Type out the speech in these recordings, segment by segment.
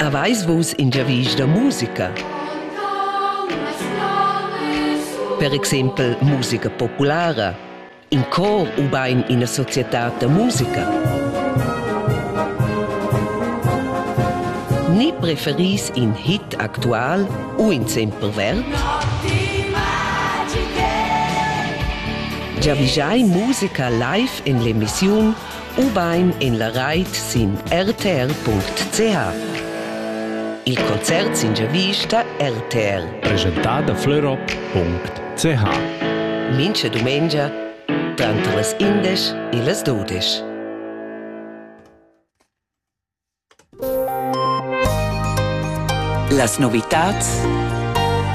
Aveis vus in giavisch da musica? Per exempel musica populara, in cor ubain ina societad da musica? Ni preferis in hit actual u in semper verb? Giavischai musica live en l'emissiun ubain en la rait sin rtr.ch. Il concert sin giavista RTR. Presentà da fleurop.ch Mincha dumengia tranter las indesch e las dudesch. Las novitads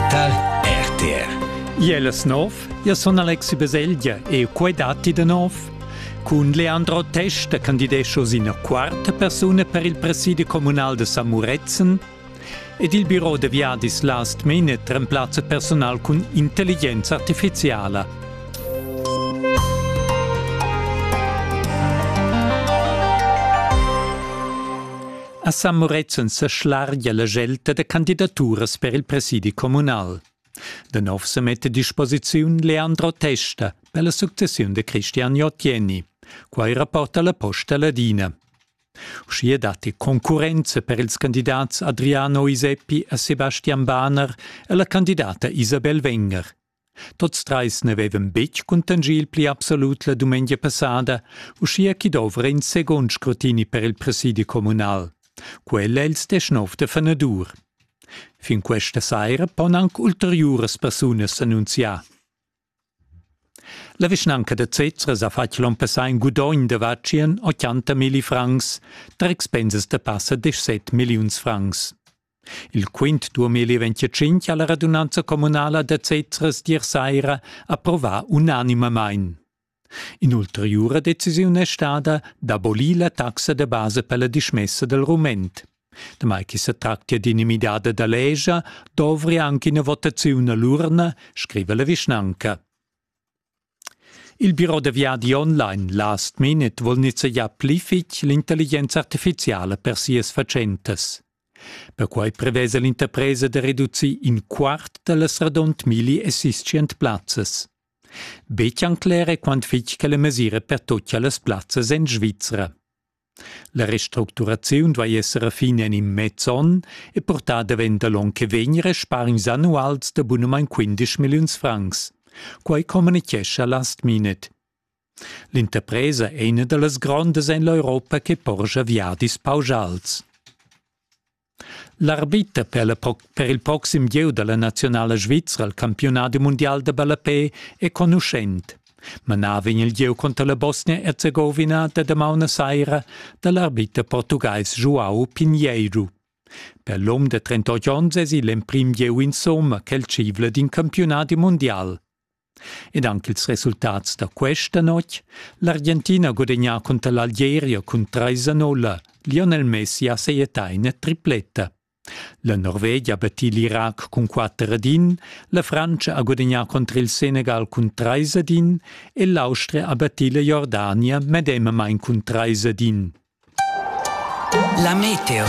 tar RTR. Iel es nov, io sun Alexi Baselgia e quai datti da nov. Cun Leandro Testa candidescho sin ina quarta persuna per il presidi communal de San Muretzen Ed il biro da viadis Last Minute remplazza personal cun intelligenza artifiziala. A San Murezzan sa schlargia la gelta da candidaturas per il presidi communal. Da nov se mette a disposiziun Leandro Testa per la successiun de Cristian Jottieni. Quai rapporta la Posta Ladina. Uschia datti concurrenza per ils candidats Adriano Iseppi e Sebastian Bahner e la candidata Isabel Wenger. Tots trais n'avevan betg cuntanschì il pli absolut la dumengia passada, uschia ch'i dovra in segund scrutini per il presidi communal. Quella è il deschnov da fanadur. Fin questa saira pon anc ulteriuras persunas s'annunziar. La vischnanca da Zezra ha fatg l'onn passà in gudogn da vatschien 80 milli francs tar expensas da passa 17 milliuns francs. Il quint 2025 ha la radunanza communala da Zezra sdir saira approvà unanimamain. In'ulteriura decisiun è stada d'abolir la taxa da basa per la dismessa dal rument. Damai che setractia d'inimidada da legia dovri anche ina votaziun a l'urna, scriva la vischnanca. Il biro da viadi online Last Minute vuol nizzegiar pli fitg l'intelligenza artifiziala per sias fatschentas. Perquai prevesa l'interpresa da reducir in quart da las radund milli assistient plazzas. Betg cler è quant fitg che la mesira pertocchia las plazzas en Svizra. La restructuraziun duai esser a fin en in mez onn e portà davent da l'onn che vegn respargns annuals da bunamain 15 milliuns francs. Quai communitgescha Last Minute. L'interpresa è ina da las grondas en l'Europa che porscha viadis pausals. L'arbiter per, la, per il proxim gieu da la naziunala svizra al campiunadi mundial da ballapè è conuschent. Manava in il gieu conter la Bosnia-Erzegovina da damaun saira da l'arbiter portugais João Pinheiro. Per l'um de 38 onns es il emprim gieu insomma quel civla d'in campiunadi mundial. Ed anc ils resultats da questa notg. L'Argentina ha gudagnà cunter l'Algeria cun trais a nolla. Lionel Messi ha sajettà ina tripletta. La Norvegia ha battì l'Irac cun quatter ad in, la Frantscha ha gudagnà contro il Senegal cun trais ad in e l'Austria ha battì la Jordania medemamain cun trais ad in. La meteo.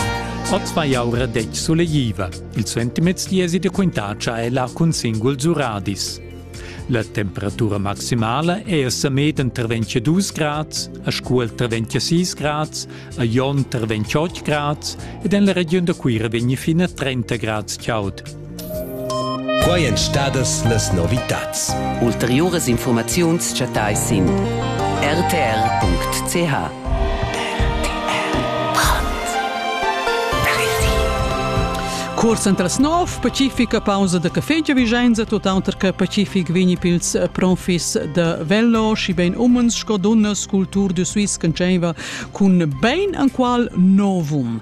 Oz vai aura detg sulegliva. Il sentimez diesi de quintacia è la cun singul zuradis. La temperatura maximala è a Samed entre 22 grads, a Scuol tra 26 grads, a Jon tra 28 grads ed en la region da Cuira vegni fino a 30 grads chaud. Quai èn stadas las novitads. Ulteriuras infurmaziuns chattais sin rtr.ch. Cuors entras nov pacifica pausa da café già Vigenza tuttauter che pacific vegni pils profis da Vello și ben umens sco dunnas cultur de Suisse concenva cun ben anqual novum.